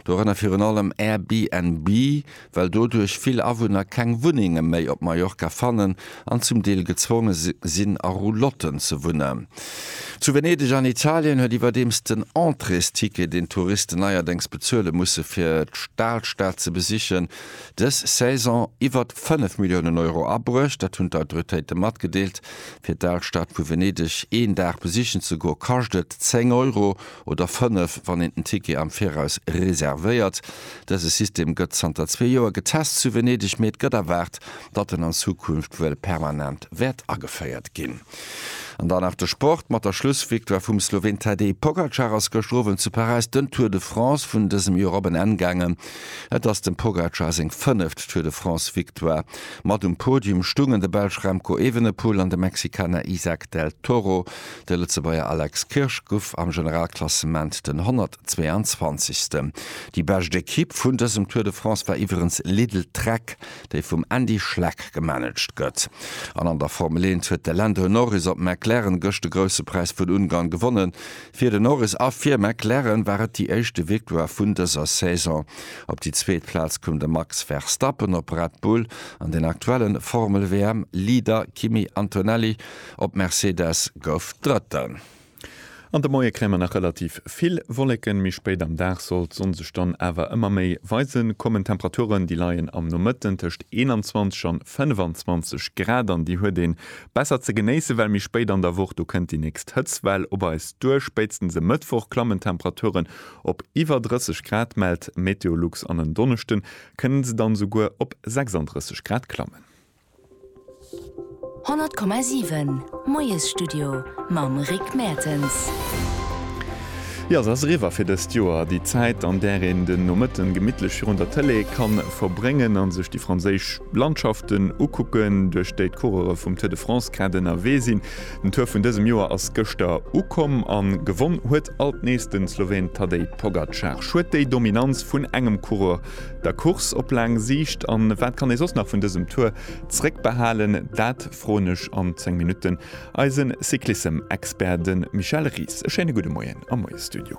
Dorënner virun allem Airbnb, well doduerch vill Awunner keng Wunnenge méi op Mallorca fannen an zum Deel gezwonge sinn a Roulotten ze wunnen. Zu Venedeg an Italien huet iwwerdeems den Entréesticket, deen d'Touristen neierdéngs bezuele musse fir d'Alstad ze besichen, dës Saison iwwer 5 Milliounen Euro abruecht. Dat hunn d'Autoritéite matgedeelt. Fir d'Alstad vu Venedeg een Dag besichen ze goe kascht et 10 Euro. oder fënnef, wann een den Ticket am Viraus reservéiert. Dëse System gëtt zanter zwee Joer getest zu Venedeg, mee et gëtt erwaart, datt en an Zukunft wuel permanent wäert ageféiert ginn. An dann nach de Sport mat der Schlussvictoire vum Sloween Tadej Pogacar ass gëschter Owend zu Paräis den Tour de France vun dësem Joer op en Enn gaangen. Et ass dem Pogacar seng fënneft Tour de France-Victoire. Mat um Podium stungen de Belsch Remco Evenepoel an de Mexikaner Izack del Toro. De Lëtzebuerger Alex Kirsch guff am Generalklassement den 122. Déi bescht Ekipp vun dësem Tour de France war iwwerens Lidl Trek, déi vum Andy Schleck gemanaged gëtt. An an der Formel 1 huet de Lando Norris op McLaren gëscht de Grousse Präis vun Ungarn gewonnen. Fir de Norris a fir McLaren war et déi éischte Victoire vun dëser Saison. Op déi zweet Plaz koum de Max Verstappen op Red Bull an den aktuelle Formel-WM-Leader Kimi Antonelli Op Mercedes gouf Drëtten. An de Moie kréie mer nach relativ vill Wolleken, méi spéit am Dag soll d'Sonn sech dann awer ëmmer méi weisen kommen. D'Temperaturen, déi leien am Nomëtten tëscht 21 an 25 Grad an déi huet een besser ze genéissen, well méi spéit an der Woch, do kënnt déi nächst Hëtztwell op eis duer. Spéitstens e Mëttwoch klammen d'Temperaturen op iwwer 30 Grad, mellt Meteolux, an en Donneschden kënnen se dann esouguer op 36 Grad klammen. 100,7 Moiesstudio mam Rick Mertens. Jo, se ass eriwwer fir dëst Joer, déi Zäit, an där een den Nomëtten gemittlech virun der Tëlee ka verbréngen a sech déi franséisch Landschaften ukucken, duerch déi d'Coureure vum Tour de France grad ënnerwee sinn. Den Tour vun dësem Joer ass gëschter ukomm a gewonn huet alt nees de Sloween Tadej Pogacar. Schued, déi Dominanz vun engem Coureur der Course op laang Siicht an wat kann ee soss nach vun dësem Tour zréckbehalen, dat froen ech an 10 Minutten eisen Cyclissem-Expert, de Michel Ries. E schéine gudde Moien am Moie Studio.